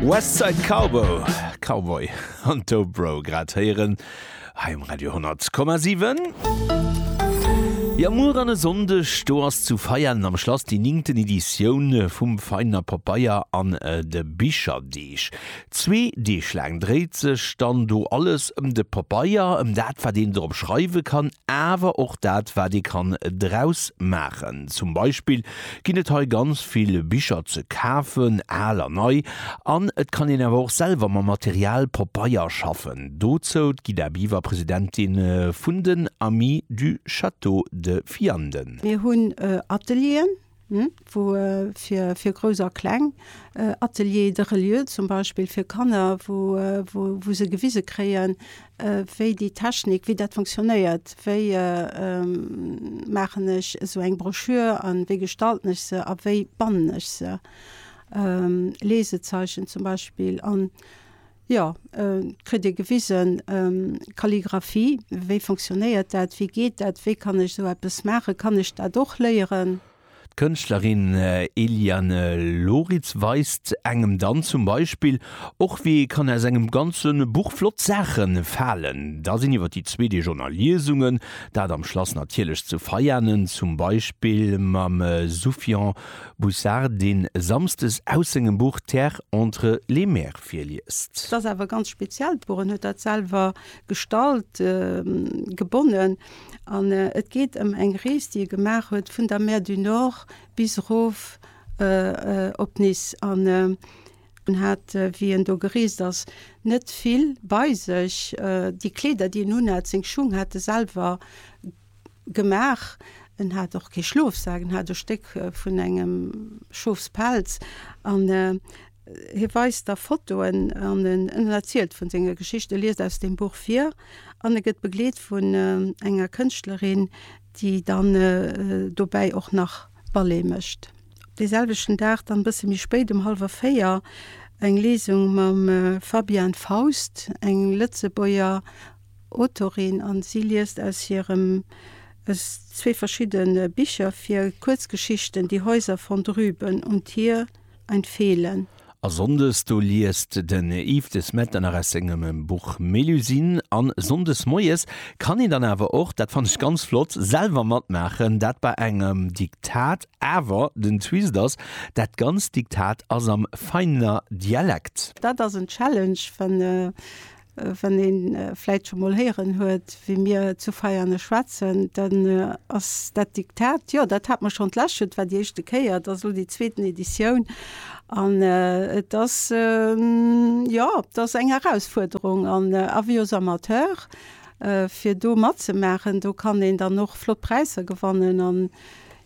West Side Cowboy, Cowboy an Dobro grad héieren hei um Radio 10,7. Jo muer an e Sonndeg do ass zu Veianen am Schlass déi ningten Editioun vum Veiner Papaier an de Bicherdeeg. Zwee Deeg laang dréit sech dann do alles ëm de Papaier, ëm dat wat een drop schreiwe kann, awer och dat wat ee kann draus maachen. Zum Beispill ginn et hei ganz vill Bicher ze kafen, al a nei, an et kann een awer och selwer mam Material Papeier schaffen. Dozou d'Guida Biver, Presidentin vun den Amis du Château de Vianden. Mir hunn Atelieren, wou fir Grouss a Kleng, Atelier de reliure zum Beispill fir Kanner, wou se gewise kréien, wéi déi Technik, wéi dat funktionéiert, wéi maachen ech esou eng Broschür a wéi gestalten ech se a wéi bannen ech se, Lesezeichen zum Beispill, an jo kritt ee gewisen, Kalligraphie, wéi funktionéiert dat, wéi geet dat, wéi kann ech esou eppes maachen, kann ech dat och léieren? D'Kënschtlerin Eliane Loritz weist engem dann zum Beispill och, wéi ee kann aus engem ganze Buch flott Saache falen. Da sinn iwwer déi zwee Deeg och nach Liesungen, dat am Schlass natierlech zu Veianen, zum Beispill mam Soufian Boussart, dee samsdes aus sengem Buch Terre entre les mers virliest. S'ass awer ganz speziell, d'Buch, en huet dat selwer gestallt, gebonnen. An et geet ëm eng Rees, déi e gemaach huet vun der Mer du Nord bis erof op Nice. An en hat, wéi en do gereest ass, net vill bei sech. Déi Kleeder, déi en unhat, seng Schung hat e selwer gemaach. En hat och kee Schlofsak, en hat e Stéck vun engem Schofspelz. An. Hie weist da Fotoen an en erzielt vun senger Geschicht. E liest aus dem Buch vir an e gëtt begleet vun enger Kënschtlerin, déi dann dobäi och nach Ballet mécht. Dee selwechten Dag dann e bësse méi spéit um hallwer véier eng Lesung mam Fabienne Faust, eng Lëtzebuerger Autorin, an si liest aus hirem aus zwee verschiddene Bicher vir, Kuerzgeschichten, Die Häuser von drüben und hier. ein Fehlen. A Sonndes, do liest den Yves De Smet dann nach aus sengem Buch Mélusine. An Sonndes moies kann een dann awer och, dat fannt ech ganz flott, selwer matmaachen, dat bei engem Diktat. Awer den Twist ass, dat ganzt Diktat ass am Veidner Dialekt. Dat ass en Challenge, wann Wann een vläit scho mol héieren huet, wéi mir zu Veianen schwätzen, dann ass dat Diktat, jo, dat hat mer schonn d'läschent, war déi éischte Kéier, et ass elo déi zweeten Editioun an et ass, jo, et ass eng Erausfuerderung an Avis aux amateurs, fir do matzemaachen. Do kann een dann och flott Präisser gewannen an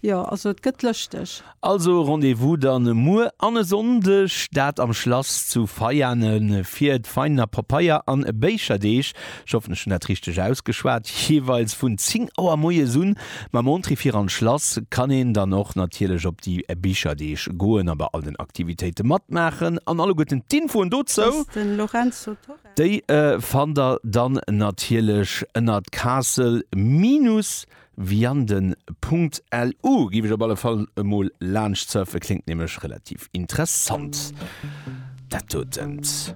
Jo, also et gëtt lëschteg. Also Rendez-vous dann muer an e Sonndeg, dat am Schlass zu Veianen fir d'Veianer Papeier an Béicherdeeg, ech hoffen ech hunn dat richteg ausgeschwat, jeeweils vun 10 Auer moies un. Mam Entrée fir an d'Schlass kann een dann och natierlech op déi Bicherdeeg goen a bei all den Aktivitéite matmaachen an alleguerten d'Infoen dozou, déi fannt der dann natierlech ënnert castle-veianen.lu. Viande Punkt LU giff ech op alle Fall emol laanscht surfen, kléngt nämlech relativ interessant dat dotent.